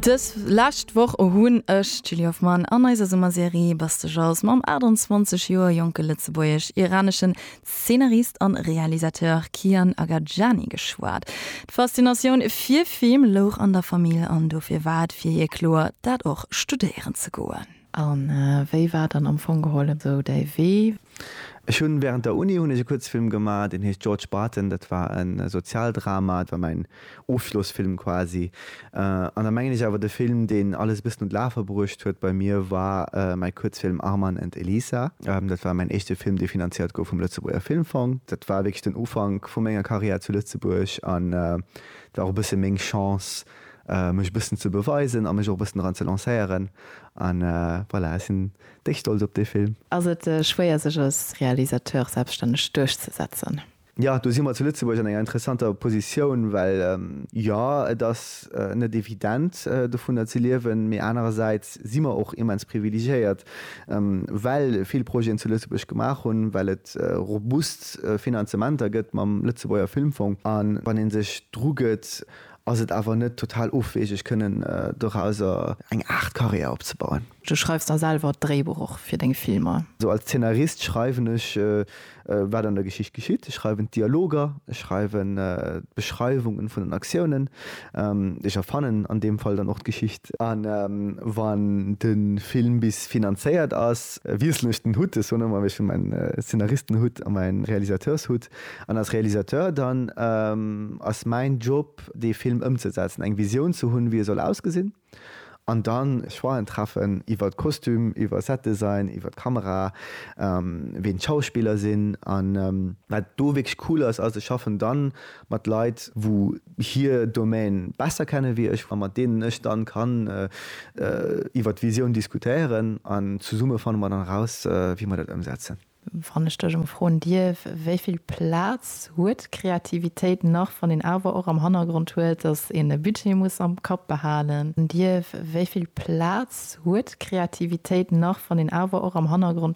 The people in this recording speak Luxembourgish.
Dës lescht Woch hunn ech, d'Julie Hoffmann, an eiser Summerserie Bass de Jazz mam 28 Joer jonke lëtzebuergesch-iraneschen Zeenarist a Realisateur Kian Agajani geschwat. D'Faszinatioun fir Film louch an der Famill an dofir war et fir hie kloer, dat och studéieren ze goen. A wéi war dann am Fong geholl esou däi Wee? Ech hunn während der Uni hunn ech e Kuerzfilm gemaach, deen heescht George Barton. Dat war e Sozialdrama, dat war mäin Ofschlossfilm quasi. An da mengen ech awer, de Film, deen alles e bëssen un d'Lafe bruecht huet bei mir, war mäi Kuerzfilm Arman and Elisa. Dat war mäin éischte Film, dee finanziert gouf vum Lëtzebuerger Filmfong. Dat war wierklech den Ufank vu menger Karriär zu Lëtzebuerg an et war och e bësse meng Chance, mech e bëssen ze beweisen a mech och e bëssen dran ze lancéieren an voilà, ech sinn déck stolz op dee Film. Ass et schwéier sech als Realisateur selbststänneg duerchzesetzen? Jo, do si mer zu Lëtzebuerg an enger interessanter Positioun, well jo et ass net evident dovunner ze liewen, mee anerersäits si mer och immens privilegiéiert, well vill Projeten zu Lëtzebuerg gemaach hunn, well et robust Finanzementer gëtt mam Lëtzebuerger Filmfong an wann ee sech drugëtt, Ass et awer net total ofwegeg kënnen dorauser eng Aart Karriär opzebauen? Du schreifs da selwer d'Dréibuch och fir deng Filmer? Sou als Zeenarist schreiwen ech wat an der Geschicht geschitt. Ech schreiwen d'Dialoger, ech schreiwen d'Beschreiwungen vun den Aktiounen, ech erfannen an deem Fall dann och d'Geschicht. A wann de Film bis finanzéiert ass, wiesselen ech den Hutt, ech soen ëmmer ech hunn mäin Zeenaristenhutt a mäin Realisateurshutt, An als Realisateur dann ass mäin Job dee Film ëmzesetzen, eng Visioun ze hunn wéi e soll ausgesinn an dann Choixen treffen iwwert Kostüm, iwwer Set Design, iwwert Kamera, ween d'Schauspiller sinn. A wat do wierklech cool ass, ass ech schaffen dann mat Leit wou hir Domaine besser kennen wéi ech, a mat deenen ech dann kann iwwert d'Visioun diskutéieren an zesumme fanne mer dann eraus wéi mer dat ëmsetzen. Wann ech dech elo froen dierf, wéi vill Plaz huet d'Kreativitéit nach, wann een awer och am Hannergrond huet, dass een e Budget muss am Kapp behalen dierf, wéi vill Plaz huet d'Kreativitéit nach, wann een awer och am Hannergrond.